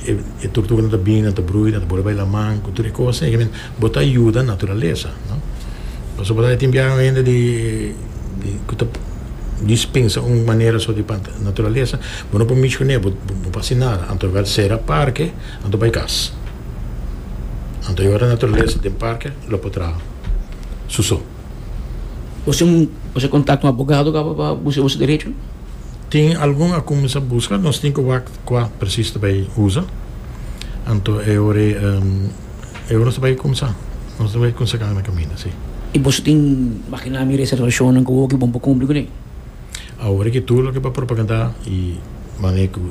e turtuganan ta bini nan ta brui nan ta bole bai laman ku tur e kos ei bo ta yuda naturalesa no pasobra bo ta tin biaha un hende di ku ta dispensa un manera so di panta naturalesa bo no por mishi ku ne bo bo por hasi nada anto lo bai sera parke anto bai kas. Anto e ora naturalesa den parke lo por traha su so. Bo sin bo sin kontakto un abogado kaba pa buska boso derecho? Tin algun a kuminsá buska, nos tin ku wak kua presis ta bai usa. Anto e ora ei e ora nos ta bai kuminsá. Nos ta bai kuminsá gana kaminda, si. I boso tin, imaginá mi, reservashonnan ku oki bon pa kumpli kuné? Awor ki tur loke pa propagandá i manera ku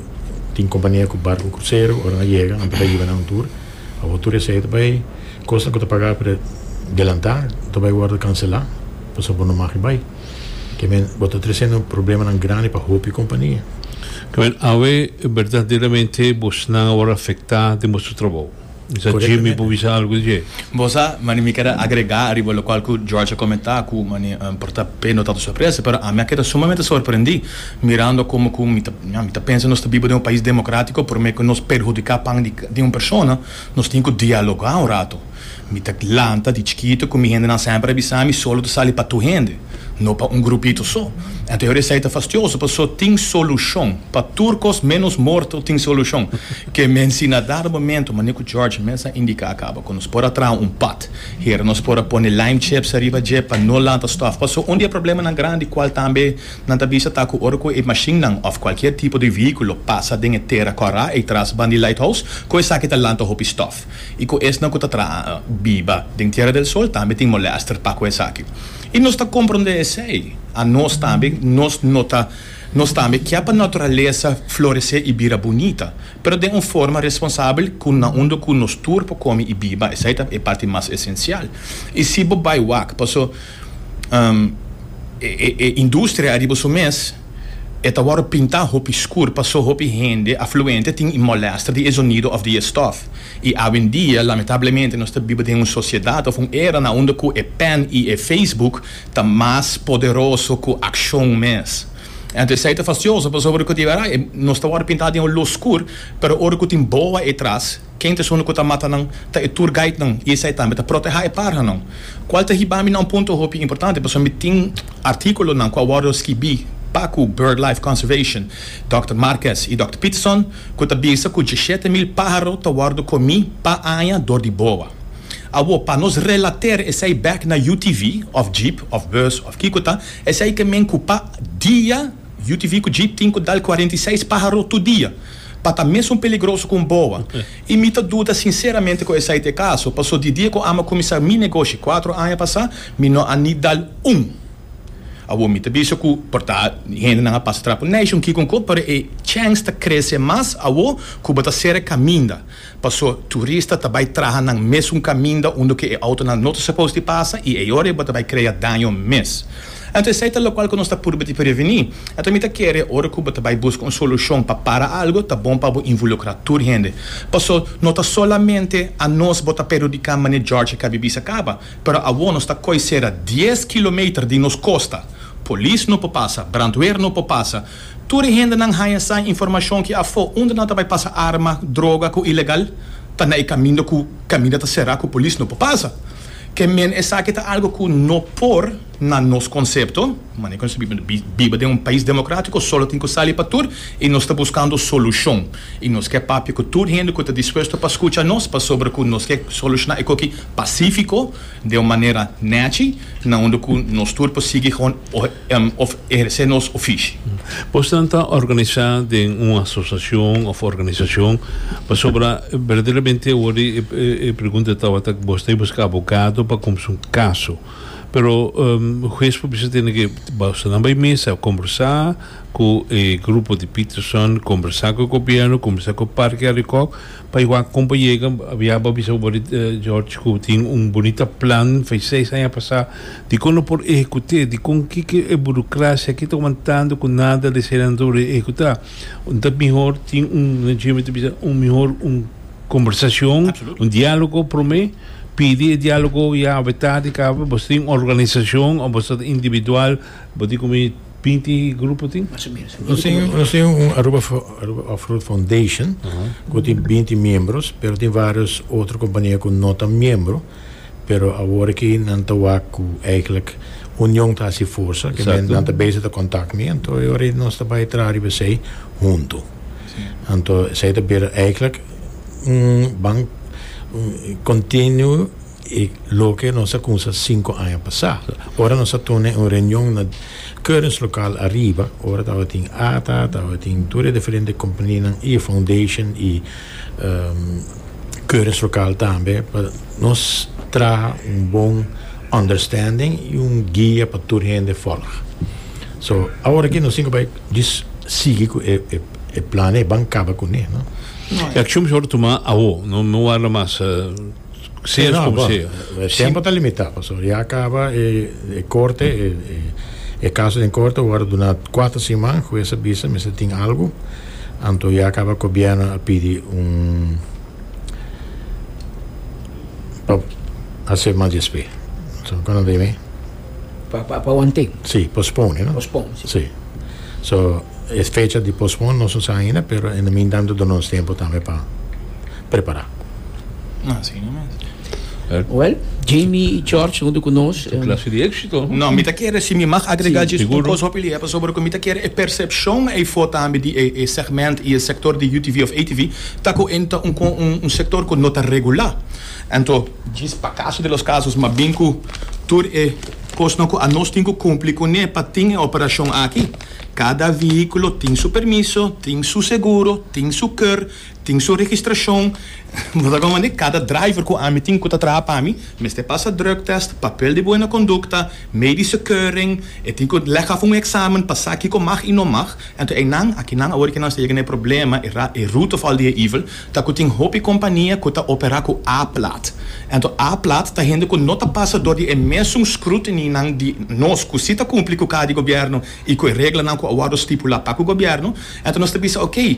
tin kompania ku barku ku krusero ora nan a yega nan ta kariba na un tur. Awor tur esei ta bai kosnan ku ta pagá pre delantá ta bai wòrdu kanselá pasobra bo no mag e bai. Ke men bo ta tresendo problemanan grandi pa hopi kompania. Awe, berdaderamente bosnan awor afektá den boso trabou. Sa Jimmy por bisa algu di dje? Bo sa, mane, mi keda agregá ariba lokual ku George a komentá ku, mane, por ta pe no tantu sorpresa, pero ami a keda sumamente sorprendí mirando komo ku mi ta, ña, mi ta pensa nos ta biba den un pais demokratiko, promé ku nos perhudiká pan di, di un persona, nos tin ku dialogá un ratu. Mi ta lanta di chikitu ku mi hendenan semper a bisami, solo ta sali pa tu hende. no pa un grupito so. Anto Herodes Said ta fastioso paso tin solucion, pa tur cos menos morto tin solucion, que men si na dado momento manera cu George mes a indica a caba cu nos por a traha un pad hera nos por a pone lime chips ariba dje pa no lanta stof paso un di e problemanan grandi cual tambe nan ta bisa ta cu ora cu e mashinnan of cualkier tipo di vehiculo pasa den e tera cora ey tras ban di lighthouse cu esaki ta lanta hopi stof. molèst i ku esnan ku ta traha biba den Tiera del Sol tambe tin molèster pa ku esaki. I nos ta komprondé esei. A nos tambe, nos no ta nos tambe kia pa naturalesa floresé i bira bunita, pero den un forma responsabel ku na unda ku nos tur por komi i biba, esei ta e parti mas esensial. I si bo bai wak, paso. E industria ariba su mes e ta wòrdu pintá hopi skur pasó hopi hende afluente tin e mòlèster di e zonido òf di e stòf. I awendia, lamentablemente, nos ta biba den un sosiedat òf un era na unda ku e pèn i e facebook ta mas poderoso ku akshon mes. Anto esei ta fastioso pasobra ku di wèrae nos ta wòrdu pintá den un lus skur, pero ora ku tin boa e tras, Ken ta esuna ku ta mata nan? Ta e tour guidenan i esei tambe ta protehá e parhanan, kual ta hiba mi na un punto hopi importante pasobra mi tin artíkulonan ku a wòrdu skibí pa ku BirdLife Conservation, Dòkter Marquez i Dòkter Peterson, ku ta bisa ku djeshete mil páharo ta wòrdu komí pa aña dor di boa. Awor, pa nos relater esei bèk na UTV òf jeep òf bus òf kiko ta, esei ke mi a inkupa dia. UTV ku jeep tin ku dal cuarenta y seis páharo tur dia pa ta mesun peligroso ku un boa i mi ta duda sinseramente ku esei ta e kaso paso di dia ku ama kuminsá mi negoshi kuatro aña pasá mi no a ni dal un awor mi ta bisa ku por ta hendenan a pasa trapo nation kiko kó pero e chèns ta krese mas awor ku bo ta sera e kaminda. Paso turista ta bai traha nan mesun kaminda unda ku e outonan no ta supos di pasa i e ora bo ta bai krea daño mes. Anto esei ta lokual ku nos ta purba di prevení. Anto mi ta kere ora ku bo ta bai buska un solushon pa para algu ta bon pa bo invulukrá tur hende. Paso no ta solamente anos bo ta perhudiká mane George a kabi bisa kaba, pero awor nos ta koi sera dies kilometer di nos kosta. Polis no por pasa, brandweer no por pasa, Tur e hendenan haña sa e informashon ki afó unda nan ta bai pasa arma, droga ku ilegal ta na e kamindo ku kaminda ta será ku polis no por pasa. Ke men esaki ta algu ku no por na nos konsepto, manera ku nos ta biba den un pais demokratiko, solo tin ku sali pa tur i nos ta buskando solushon. I nos ke papia ku tur hende ku ta dispuesto pa skucha nos pasobra ku nos ke solushoná e koki pasífiko, den un manera nèchi na unda ku nos tur por sigui hon òf ehersé nos ofishi. Bosan ta organisá den un asosiashon òf organisashon? Pasobra berdaderamente awor di e pregunta tabata ku bos ta buská abogado pa kumsa un kaso. Pero hues por bisa tene ke boso nan bai mesa kombersá ku e grupo di Peterson, kombersá ku e gobièrnu, kombersá ku Parke Arikòk, Pa e wak con pa yega, ya bo a bisa bo di George cu tin un bunita plan fai seis aña pasa, dicon lo por ehecut'e? Dicon kiko e burocracia aki ta wantando cu nada de eseinan lo por ehecuta? Ta mihor tin un, nan ciu mi ta bisa, un mihor un conversacion, un dialogo prome, pidi e dialogo ya awe tardi caba, boso tin un organisacion o boso ta individual, bo tin cu mi. Pinti grupo tin? Mas o menos. Nos tin, nos tin un Aruba, Aruba Off-Road Foundation, cu tin binti miembros, pero tin varios otro compania cu no ta miembro, pero awor aki nan ta wak cu eigenlijk union ta haci forsa, ke men, nan ta bezig ta contact mi, anto e ora ei nos ta bay traha riba esey hunto. Anto esey ta bira eigenlijk un ban continue. I loke nos a kumsa sinku aña pasá, ora nos a tune un reunion na Currents lokal ariba, ora tabatin ata, tabatin tur e diferente kompaninan i e foundation i Currents lokal tambe, pa nos traha un bon understanding i un guia pa tur hende fòlg. So, awor aki nos tin ku bai djis sigui ku e e planan, e ban kaba kuné, no. E akshon mihor tumá awo, no warda mas. Sí, no, bo, e tempo ta limita, pasobra ya caba e corte, e caso den corte a worde duna cuater siman, hues a bisa mester tin algo, anto ya caba gobierno a pidi un pa hacer mas despe. Pa, pa, pa wan temp. Sí, postpone, no? Postpone, sí. Sí. So, e fecha di postpone nos no sa ainda, pero en e mintanto duna nos tempu tambe pa prepará. Así no mes. Well, Jamie i George huntu ku nos. Un klase di éksito. No, mi ta kere, si mi mag agregá djis un kos hopi lihe, pasobra ku mi ta kere e persepshon eifó tambe di e segment i e sektor di UTV òf ATV ta ku e ta un, un sektor ku no ta regulá. Anto, djis pa caso de los casos mas bin cu tur e cosnan cu anos tin cu cumpli cun'e pa tin e operacion aki. Cada vehiculo tin su permiso, tin su seguro, tin su keur, tin su registracion. Bo ta comprendi? Cada driver cu ami tin cu ta traha pa mi mester pasa drugtest, papel di buena conducta, medische keuring, e tin cu leg af un examen pa sa kico mag y no mag. Anto einan, akinan awor di que nan ta yega n'e problema, e rootof al di e evil, ta cu tin hopi compania cu ta opera cu A-plat. Anto A-plat ta hende cu no ta pasa door di e mesun scrutinynan di nos cu si ta cumpli cu cada di gobierno y cu e reglanan cu a wordo stipula pa cu gobierno. Anto nos ta bisa ok,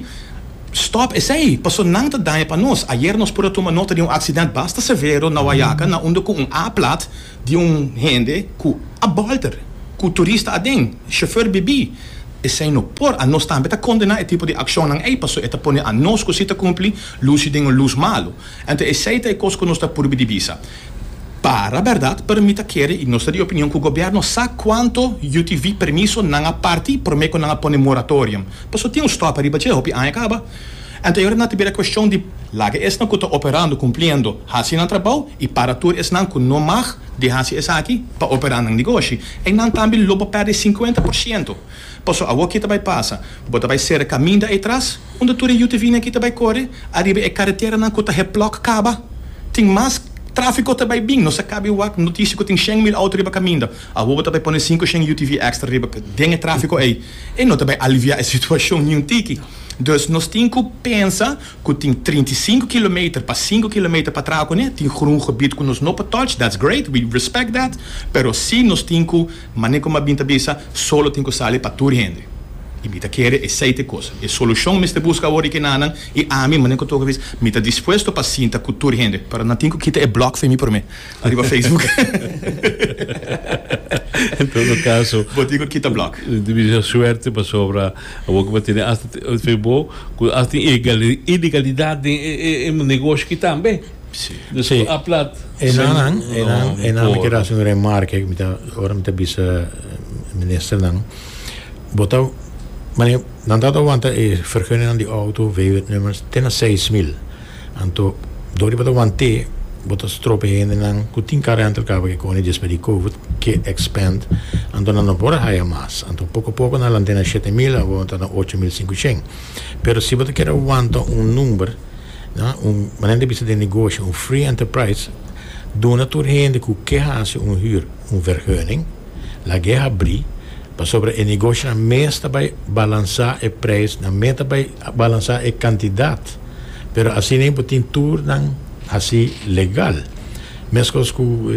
stop esey, paso nan ta daña pa nos. Ayer nos por a tuma nota di un accident basta severo na Wayaca na unda cu un A-plat, di un hende ku a bòlter ku turista aden, shofèr bibí, esei no por. Anos tambe ta kondená e tipo di akshonnan ei pasobra e ta pone anos ku si ta kumpli lusi den un lus malu. Anto esei ta e kos ku nos ta purbi di bisa. Para bèrdat, pero mi ta kere i nos ta di opinion ku gobièrnu sa kuantu UTV permiso nan a parti promé ku nan a pone moratorium. Pasobra tin un stòp ariba dje, hopi aña kaba. Anterior nan ta bira cuestion di laga esnan cu ta operando cumpliendo haci nan trabao y para tur esnan cu no mag di haci esaki pa opera nan negoshi. Eynan tambe lo bo perde cincuenta por ciento. Paso awor ki ta bay pasa? Bo ta bay cera caminda ey tras unda tur e UTVnan aki ta bay core ariba e carreteranan cu ta heplok caba. Tin mas trafico ta bay bin. Nos a caba e wak noticia cu tin shen mil auto riba caminda. Awor bo ta bay pone sinku shen UTV extra riba den e trafiko ey, ey no ta bay alivia e situashon ni un tiki. Dus nos tin ku pensa ku tin trinta i sinku kilometer pa sinku kilometer pa traha kuné, tin grun gebied ku nos no por touch, that's great, we respect that, pero si nos tin ku, mane ku Mabin ta bisa, solo tin ku sali pa tur hende. Y mi ta kere esey ta e kosa. E solushon mester buska awor di kenanan, y ami, mane ku toka bis, mi ta dispuesto pa sinta ku tur hende, pero nan tin ku kita e blok femi prome. Ariba Facebook. En todo caso. Bo tin cu kita block. Tin bisa suerte pasobra abo kiba tene asta fe bo cu asta tin ilegalidad den e negoshi ki tambe. Si. Dus si. a plat. Enan enan enan mi kier haci un remark mi ta ora mi ta bisa minister nan bo ta mane nan ta awanta e verguningnan di auto vw nummers te na seis mil. Anto, dor di bo ta want'é, bo ta strop e hendenan ku tin kar rental car pa ke kòne djispa di covid, ke expand. Anto nan no por haya mas. Anto poko poko nan lant'é na shete mil, awor nan ta na ocho mil sinkushen. Pero si bo ta kere wanta un number, na un manera di bisa den negoshi, un free enterprise, duna tur hende ku ke hasi un hür un verheuning, lag'é habrí, pasobra e negoshinan mes ta bai balansá e preis, nan mes ta bai balansá e kantidat. pero asina bo tin tur nan hasi legal mescos cu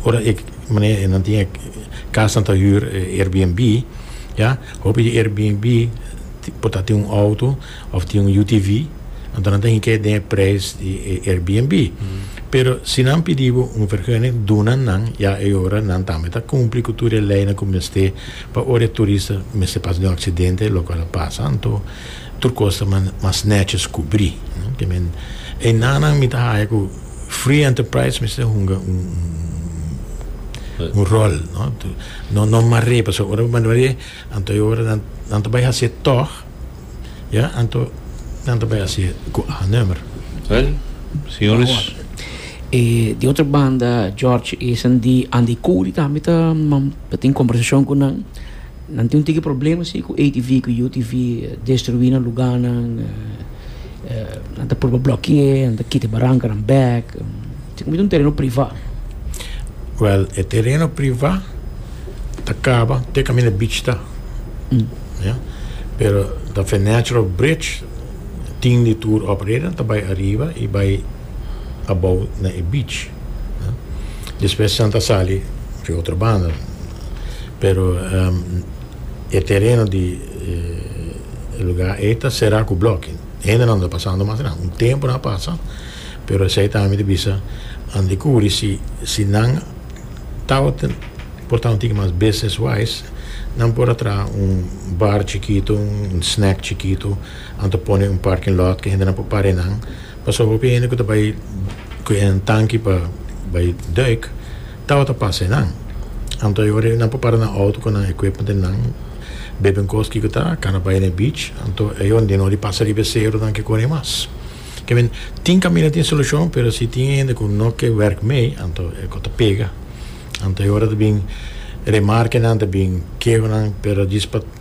ora e mane nan tin e casnan ta huur airbnb ya hopi di airbnb por ta tin un auto of tin un UTV anto nan ta hink'e den e prijs di e airbnb pero si nan pidi bo un vergunning duna nan ya e ora nan tambe ta cumpli cu tur e leynan cu mester. Pa ora e turista mester pasa den un aksidente, lokual a pasa, anto tur kos ta mas nètjes kubrí. Te men enanan mi ta haña ku Free Enterprise mester hunga un ròl. No mar'é, pasobra ora bo mar'é, anto e ora nan ta bai hasié tòg, ya, anto nan ta bai hasié ku A nùmero. Wèl, señores. E di otro banda, George, esnan di Andy Cody tambe ta. Ta tin kombersashon ku nan. Nan tin un tiki problema si ku atv ku utv destruí nan lugánan. Nan ta purba blokié, nan ta kita e barankanan bèk. Esei kumid'é un tereno privá. Wèl, e tereno privá ta kaba te kaminda beach ta. Ya. Pero ta Fenetro Bridge tin di tur operator ta bai ariba i bai. abou na e beach. Despues esnan ta sali riba otro banda, pero e tereno di e luga ei ta sera ku blòkki. Hendenan ta pasando mas ran. Un tempu nan a pasa, pero esei tambe mi ta bisa nan dikubri si si nan tabata portá un tiki mas business wise nan por a traha un bar chikitu, un snack chikitu, nan ta pone un parking lot ku hendenan por para einan Pasobra hopi hende ku ta bai ku e tanki pa bai duik tabata pasa enan. Anto e ora nan por para nan outo ku nan equipment di nan, beben kos kiko ta, kana bai na e beach, anto e ora di no di pasa riba e seronan ke kore mas. Ke men, tin kaminda tin solushon, pero si tin hende ku no ke wèrk mei, anto e kos ta pega. Anto e ora ta bin remarkenan, ta bin kehonan, pero djis pa.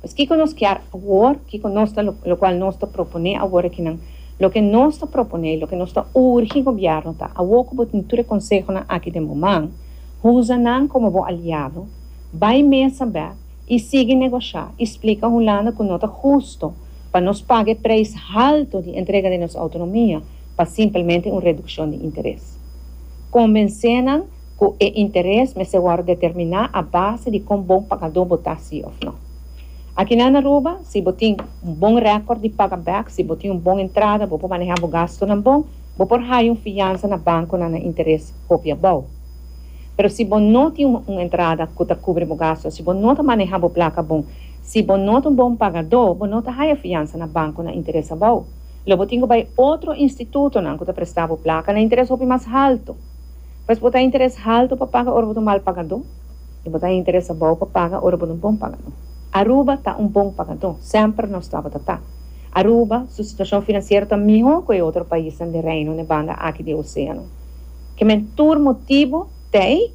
Pues kico nos kier awor? Kico nos ta lo lo cual nos ta propone awor akinan? Loke nos ta propone, loke nos ta urgi gobierno ta, awor cu bo tin tur e consehonan aki den bo man, huza nan como bo aliado, bay mesa bè y sigui negocia y splica Hulanda cu no ta husto pa nos paga e prijs halto di entrega den nos autonomia pa simplemente un reduccion di interes. Convence nan ku e interes mester wòrdu determiná a base di kon bon pagadó bo ta, sí òf nò. Akinan na Aruba, si bo tin un bon rèkòrt di paga bèk, si bo tin un bon entrada, bo por manehá bo gastunan bon, bo por haya un fiansa na bankunan na interes hopi abou. Pero si bo no tin un entrada ku ta kubri bo gastu, si bo no ta manehá bo plaka bon, si bo no ta un bon pagadó, bo no ta haya fiansa na banku na interes abou. Lo bo tin ku bai otro institutonan ku ta prestá bo plaka na interes hopi mas haltu. Pues bo ta interes haltu pa paga ora bo ta un mal pagadó, i bo ta interes abou pa paga ora bo ta un bon pagadó. Aruba ta un bon pagadó, semper nos tabata ta. Aruba su situashon finansiero ta mihó ku e otro paisnan den Reino den banda aki di e oseano. Ke men tur motibu t'ei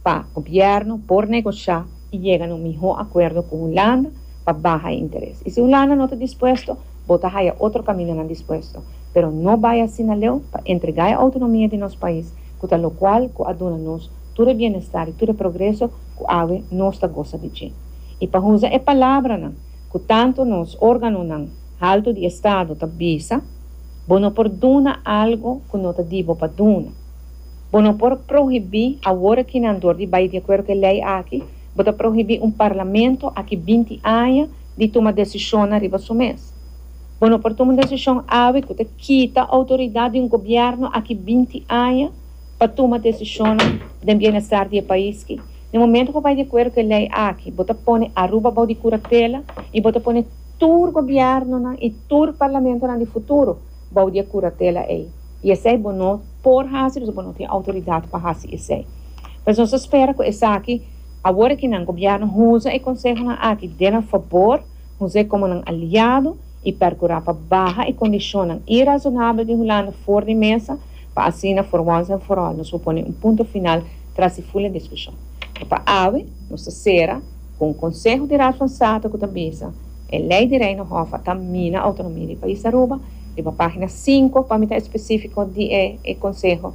pa gobièrnu por negoshá i yega na un mihó akuerdo ku Hulanda pa baha e interes. I si Hulanda no ta dispuesto, Bo ta haya otro camindonan dispuesto, pero no bay asina leu pa entrega e autonomia di nos pais cu ta locual cu a duna nos tur e bienestar y tur e progreso cu awe nos ta gosa di dje. Y pa huza e palabranan cu tanto nos organonan halto di Estado ta bisa, Bo no por duna algo cu no ta di bo pa duna. Bo no por prohibi awor akinan dor di bay di acuerdo cu e ley aki, bo ta prohibi un Parlamento aki binti aña di tuma desishonnan riba su mes. Bo no por tuma un desishon awe ku ta kita outoridat di un gobièrnu aki binti aña pa tuma desishonnan den bienestar di e pais ki. Den momentu bo bai di akuerdo ku e lei aki, bo ta pone Aruba bou di kuratela i bo ta pone tur gobièrnunan i tur parlamentonan di futuro bou di e kuratela ei. I esei bo no por hasi, pasobra bo no tin outoridat pa hasi esei. Pues nos ta spera ku esaki. Awor aki nan Gobierno huza e consehonan aki den nan fabor, huza e como nan aliado y percura pa baha e condicionnan irazonabel di Hulanda for di mesa pa asina for once and for all nos por pone un punto final tras di fula discusion. Por pa awe nos ta cera cu un conseho di Raad van State cu ta bisa, E ley di Reino Hof a ta mina autonomia di pais Aruba, riba pagina cinco pa mi ta especifico di e conseho,